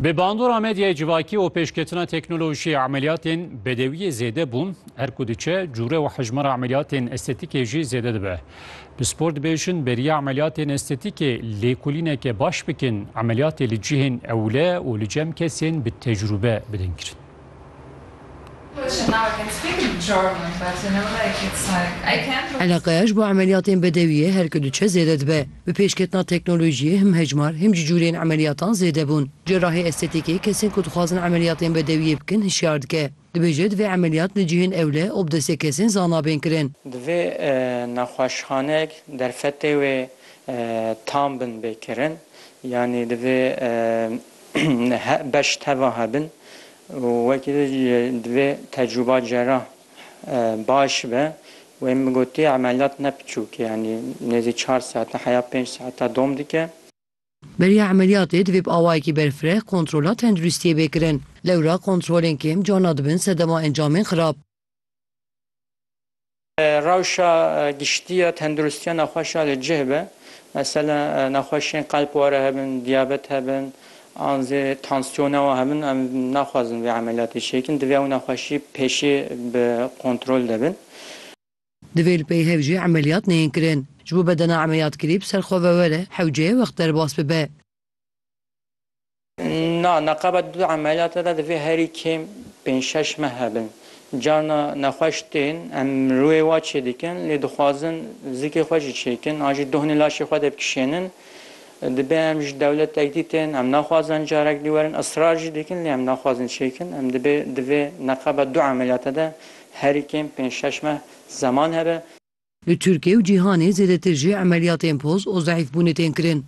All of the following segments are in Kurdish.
Bi bandora medyayê civakî û pêşketina teknolojiyê emeliyatên bedewiyê zêde bûn, her ku diçe cûre û hejmara emeliyatên estetîkê jî zêde dibe. Pispor dibêjin beriya emeliyatên estetîkê lêkolîneke baş bikin, emeliyatê li cihên ewle û li cem kesên bi tecrûbe bidin kirin. Eleqeya ji bo emeliyatên bedewiyê her ku diçe zêde dibe. Bi pêşketina teknolojiyê him hejmar him jî cûrên emeliyatan zêde bûn. Cerahê estetîkê kesên ku dixwazin emeliyatên bedewiyê bikin hişyar dike. Dibêje divê emeliyat li cihên ewle û bi destê kesên zana bên kirin. Divê nexweşxanek derfetê wê tam bin bê kirin. Yanî divê beş teva hebin û wekî din jî divê tecrûba cerah baş be û ên bigotî emeliyat ne piçûk e yanî nêzî çar saete heya pênc saete dom dike. Beriya emeliyatê divê bi awayekî berfireh kontrola tenduristiyê bê kirin. Lewra kontrolên kêm carna dibin sedema encamên xirab. Rewşa giştî ya tendirustiya nexweşa li cih be. Mesela nexweşiyên qelb were hebin, diyabet hebin an zê tansiyona wan hebin em naxwazin vê emeliyatê çê bikin. Divê ew nexweşî pêşê bi kontrol de bin. Divê li peyhev jî emeliyat neyên kirin. Ji bo bedena emeliyat kirî bi ser xwe ve were hewceyê wext derbas bibe. Na, neqeba di du emeliyata de divê herî kêm pênc şeş meh hebin. Carna nexweş tên, em rûyê wa çêdikin lê dixwazin zikê xwe jî çêkin an jî dohnê laşê xwe de bikişênin. Dibe em ji dewletek dî tên, em naxwazin carek dî werin, israr jî dikin lê em naxwazin çêkin. Em dibê di vê neqeba du emeliyata de herî kêm pênc şeş meh zeman hebe. Li Tirkiye û cîhanê zêdetir jî emeliyatên poz û zeîfbûnê tên kirin.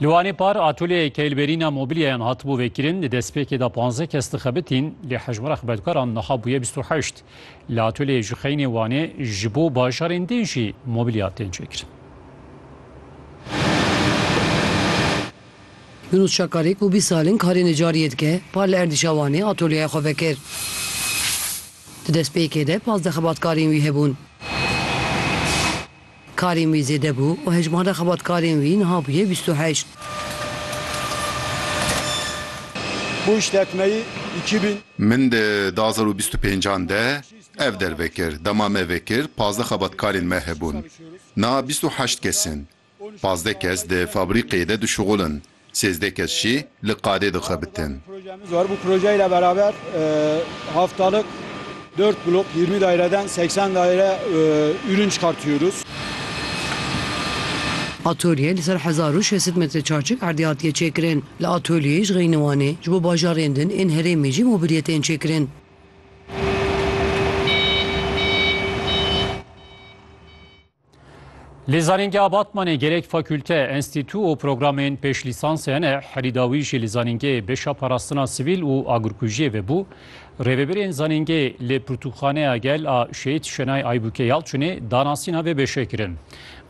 Li Wanê par atoleyê keylberîna mobîlyayan hatibû vêkirin. Di destpêkê de panzdeh kes dixebitîn lê hejmara xebetkaran niha bûye bîst û heşt. Li atoleyê Juxeynê Wanê ji bo bajarên din jî mobîlya tên çêkirin. Nûnûsçakarê ku bîst sal in karê necariyê dike, par li erdîşa Wanê atolyeya xwe vekir. Di destpêkê de pazdeh xebatkarên wî hebûn. Karên wî zêde bû û hejmara xebatkarên wî niha bûye bîst û heşt. Min di du hezar û bîst û pênc an de ev derve kir. Dema me vekir pazdeh xebatkarên me hebûn. Niha bîst û heşt kes in. Pazdeh kes di fabrîkeyê de dişuxulin, sêzdeh kes jî li qadê dixebitin. Atölyeyê li ser hezar û şeş sed metre çarçik erdê hatiye çêkirin. Li atölyeyê ji xeynî Wanê, ji bo bajarên din ên herêmê jî mobilyê tên çêkirin. Li zanîngeha Batmanê gelek fakûlte, enstîtû û programên pêşlîsansê hene. Herî dawî jî li zanîngehê bêşa parastina sivîl û agirkujiyê vebû. Rêvebirên zanîngehê li Pirtûkxaneya Gel a Şehîd Şenay Aybûkê Yalçinê danasîna vê bêşê kirin.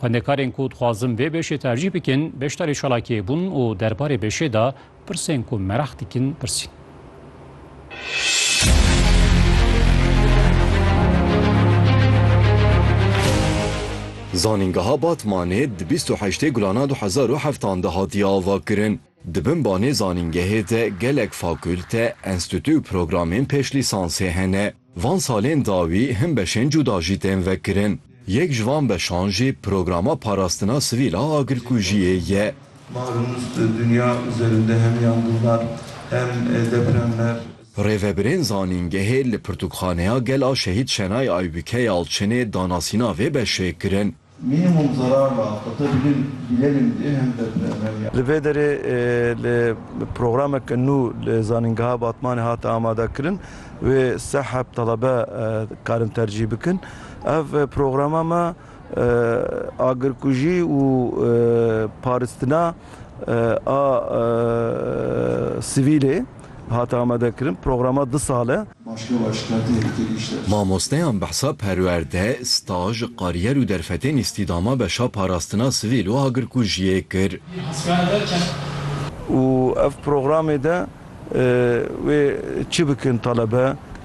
Xwendekarên ku dixwazin vê bêşê tercîh bikin beşdarê çalakiyê bûn û derbarê bêşê de Pirsên ku meraq dikin pirsîn. Zanîngeha Batmanê di bîst û heştê gulana du hezar û heftan de hatiye avakirin. Di bin banê zanîngehê de gelek fakûlte, enstîtû û programên pêşlîsansê hene. Van salên dawî hin beşên cuda jî tên vekirin. Yek ji van beşan jî Programa Parastina Sivîl a Agirkujiyê ye. Marûns Dinya û Zerinde hem yandûvar hem deprem mer. Rêvebirên zanîngehê li Pirtûkxaneya Gel a Şehîd Şenay Aybike ya Elçinê danasîna vê beşê kirin. Minimum zararla qete bilin bilelim diê hem de bi emel ya. Li vê derê li programeke nû li Zanîngeha Batmanê hate amadekirin wê seh heb telebe karin tercîh bikin. Ev programa me agirkujî û paristina a sivîlê hate amadekirin. Programa du sal e. Mamosteyan behsa perwerde, staj, kariyer û derfetên îstîdama beşa parastina sivîl û agirkujiyê kir. Û ev programê de wê çi bikin talebe?